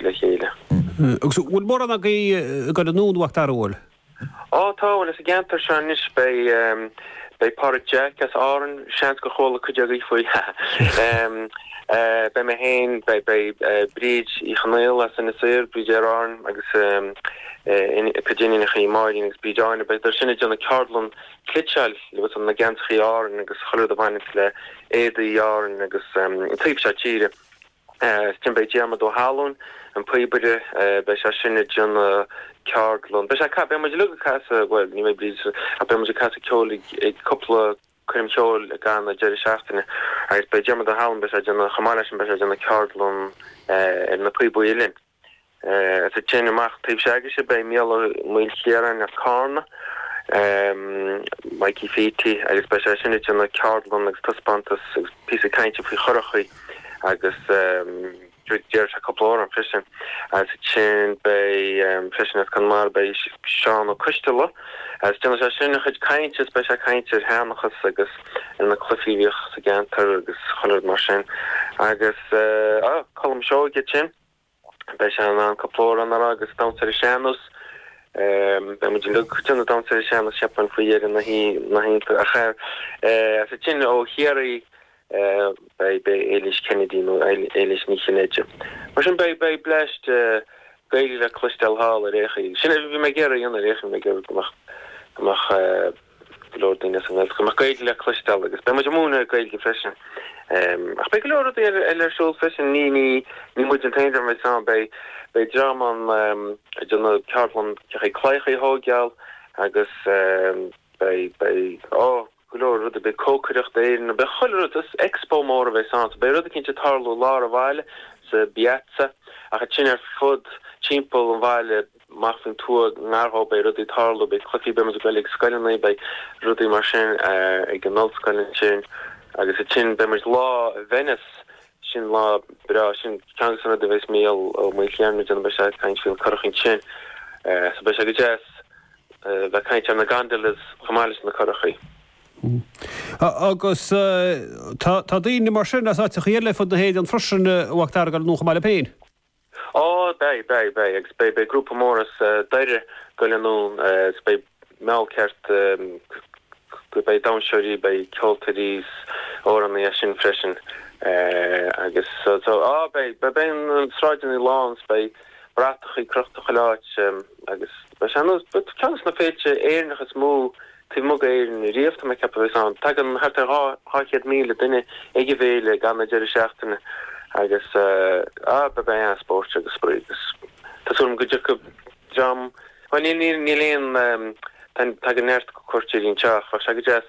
le chéile. Agus bhfuil mórán agaibh ag goil anonn a Mhac Dara? Ó, tá, bhuel, sa gceantar seo anois beidh, beidh Pádraig Jack as Árainn, seans gur chuala cuid agaibh faoi, ha ha. Beidh mé féin, beidh, beidh Bríd Uí Chonaola as Inis Oírr, Bríd Aer Árann agus a cuid iníonachaí, Máirín agus Bríd Áine, beidh, beidh siad sin ag déanamh ceardlann cniotála agus na geansachaí Árainn agus chuile rud a bhaineas le éadaí Árainn agus an taobh seo tíre. Ansin beidh Diarmaid Ó hAlúin, an píobaire, beidh sé sin ag déanamh ceardlann. Beidh sé ag, beidh muid uilig ag casadh, bhuel ní bheidh Bríd, ach beidh muid ag casadh ceoil ag, ag cúpla coirm cheoil i gCarna ag deireadh seachtaine agus beidh Diarmaid Ó hAlúin, beidh sé ag déanamh, chomh maith leis sin beidh sé ag déanamh ceardlann ar na píobaí uilleann. Ansin amach taobh s'agaibhse beidh Micil Ó Maoilchiaráin as Cárna, Mikey Pheaty agus beidh sé sin ag déanamh ceardlann agus taispeántas agus píosa cainte faoi churachaí agus déarfaidh sé cúpla amhrán freisin. Ansin beidh freisin as Conamara beidh Seán Ó Coistealbha agus déanfaidh sé sin an-chuid cainte agus beidh sé ag caint ar sheanchas agus ar na cluichí a bhíodh sa gceantar agus chuile rud mar sin agus á, Colm Seoighe as sin. Beidh sé ann cúpla amhrán a rá agus damhsa ar an sean-nós. Beidh muid uilig ag damhsa ar an sean-nós cheapfainn faoi dheireadh na hoíche. Ach ansin ó Chiarraí beidh Éilís Kennedy nó Éilís Ní Chinnéide. Mar sin beidh blast Gaeilge le cloisteáil thall i Reggio. Sin é a bhí mé ag iarraidh a dhéanamh i Reggio, bhí mé ag iarraidh go mbeadh go leor daoine as an nGaeltacht go mbeadh Gaeilge le cloisteáil agus beidh muid ag múineadh Gaeilge freisin. Ach beidh go leor rudaí eile ar siúl freisin, ní ní muid an t-aon dream a bheidh ann, beidh dream ann ag déanamh ceardlann claíochaí clocha a thógáil agus beidh, ó, go leor rudaí, beidh cócaireacht as Éirinn, beidh chuile rud, is expo mór a bheas ann so beidh rudaí cinnte ag tarlú i lár an bhaile, sa bPiazza ach ansin ar fud timpeall an bhaile. Amach faoin tuath, i ngar dó, beidh rudaí ag tarlú, beidh cluichí, beidh muid ag goil chuig scoileanna, beidh rudaí mar sin ag an ollscoil ansin agus ansin beidh muid lá i Venice, sin lá breá, sin ceann dos na rudaí a bheas Micil Ó Maoilchiaráin a dhéanamh beidh sé ag caint faoin curach ansin so beidh sé go deas bheith caint ar na gondolas chomh maith leis na curachaí. Agus tá daoine mar sin as áiteachaí eile ar fud na hÉireann freisin a Mhac Dara ag goil anonn chomh maith libh féin. Ó, beidh, beidh, beidh agus beidh, beidh grúpa mór as Doire ag goil anonn agus beidh an-cheart, beidh damshóirí, beidh ceoltóirí 's amhránaí as sin freisin agus so, so, á, beidh, beidh na sráideanna lán 's beidh bratacha crochta chuile áit agus. Beidh sé ar cheann de na féilte Éireannacha is mó taobh amuigh d'Éirinn riamh, tá mé ag ceapadh, a bheas ann. Tagann thart ar 200,000 duine ag an bhféile i gcaitheamh an deireadh seachtaine agus beidh an-spóirt agus spraoi agus tá súil agam go dtiocfaidh dream, bhuel níl aon, tagann neart cuairteoirí anseo ach bheadh sé go deas